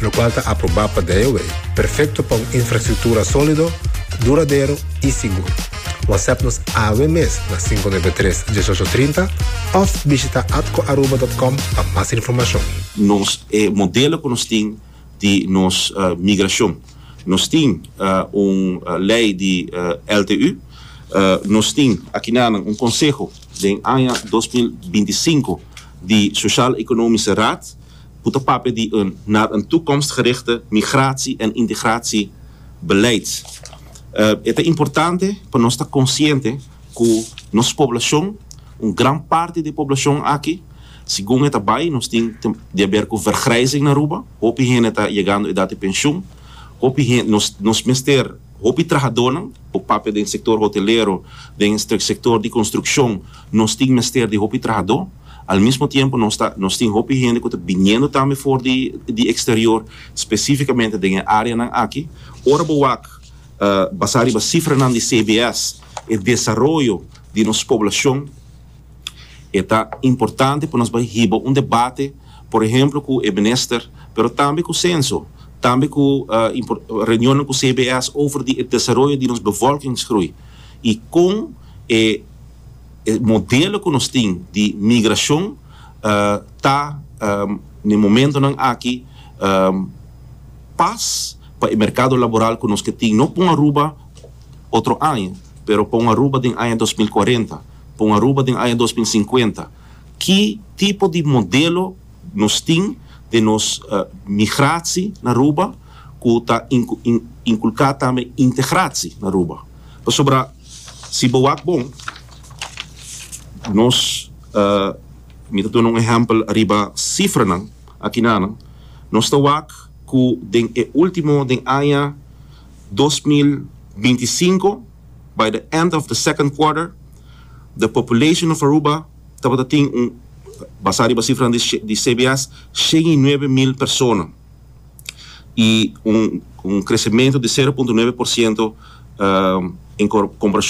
lokual ta aprobá pa DIOA, perfekto pa un infrastruktura sólido, duradero i sigur. Whatsapp nos awe mes na sinku nuebe tres, dieshocho trinta òf bishita atcoaruba.com pa mas informashon. Nos e modelo cu nos tin di nos migracion. Nos tin un ley di LTU. Nos tin aki nanan un conseho den aña dos mil binti sinku di Sociaal-Economische Raad. Ku ta papia di un nar un toekomstgerichte migratie en integratie beleid. E ta importante pa nos ta konsiente ku nos poblashon, un gran parti di e poblashon aki, segun e ta bai nos tin di haber ku vergrijzing na Aruba, hopi hende ta yegando edat di penshun, hopi hende nos mester. Hopi trahadónan, por papia den sektor hotelero, den sektor di konstrukshon, nos tin mester di hopi trahadó. Al mismo tiempo nos ta, nos tin hopi hende ku ta biniendo tambe for di di eksterior, spesífikamente den e áreanan aki. Ora bo wak basá riba sifranan di CBS, e desaroyo di nos poblashon, E ta importante pa nos bai hiba un debate, por ehemplo cu e Minister, pero tambe cu Censo, tambe cu reunionnan cu CBS over di e desaroyo di nos bevolkingsgroei y con e modelo cu nos tin di migracion ta na e momentonan aki pas pa e mercado laboral cu nos ke tin, no pon Aruba otro aña, pero pon Aruba den aña dos mil kuarenta. pa un Aruba den aña dos mil sinkuenta. Ki tipo di modelo nos tin den nos migratie na Aruba cu ta inculca tambe integratie na Aruba? Pasobra si bo wak bon nos mi ta duna un ehempel ariba cifranan akinanan nos ta wak cu den e ultimo den aña dos mil binti sinko, By the end of the second quarter, the population of Aruba tabata tin un, basá riba sifranan di CBS, shen i nuebe mil persona, i un un kresementu di sero punto nuebe por siento en komparashon.